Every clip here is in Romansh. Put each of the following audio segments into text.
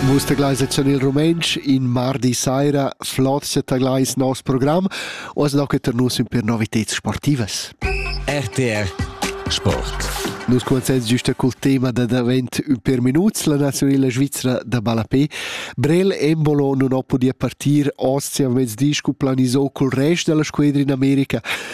Vus tegleis en il rumentsch in mardi saira flot tegleis nos program oz locheter nus in per novitads sportivas. RTR Sport. Nus consens giusta col tema da davent un per minuts la nazionala Svizzera da ballapé. Brel Embolo non ho podia partir ostia mezdi cu planisò col rest della squadra in America.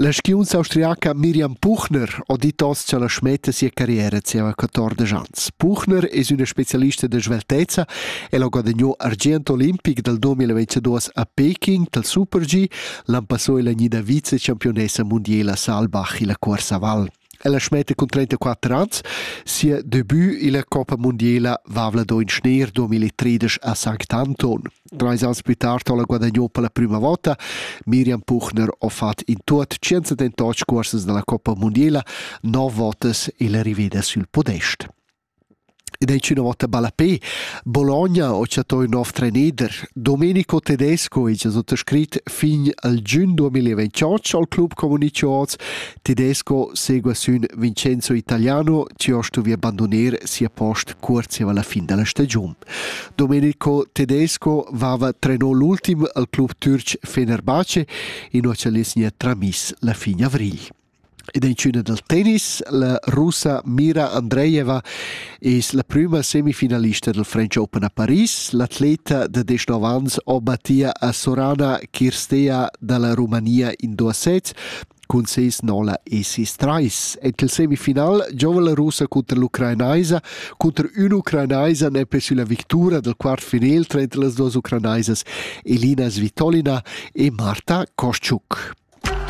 La skiunza austriaca Mirjam Puchner ha dit oz cha la smetta sia carriera zieva quatordesch ans. Puchner es üna specialista da sveltezza. El ha guadagnò argient olimpic dal 2022 a Peking dal super-G, l'han passo illa gnida vice-champiunessa mundiela Saalbach illa cuorsa val. Ella smetta cun 34 ans sia debut illa Coppa mundiela Vavlador in Schneer 2013 a Sanctanton. Trais ans pü tard ho la guadagnò per la prüma vota. Miriam Puchner ho fat in tuot 178 cuorsas da la Coppa mundiela, 9 votas illa riveda sül podest. Ed ei tschüna vota ballapè. Bologna ho chattà ün nov trenider. Domenico Tedesco hegia suttascrit fin al giün 2028 al club communicho hoz. Tedesco segua sün Vincenzo Italiano, chi ho stuvi abbandoner sia post cuorzeva alla fin della stagiun. Domenico Tedesco vava trenò l'ultim al club türc Fenerbahce e no ha nia tramiss la fin avrigl. Ed in tschüna dal tennis, la russa Mira Andreeva es la prüma semifinalista dal French Open a Paris. L'atleta da 19 ans o Mattia Sorana Kirstea da la Rumania in duos sets cun ses nola e ses trais. En il semifinal giova la russa cunter l'ucrainaisa. Cunter un'ucrainaisa n'è sulla victura dal quart final tranter las duas ucrainaisas Elina Svitolina e Marta Koschuk.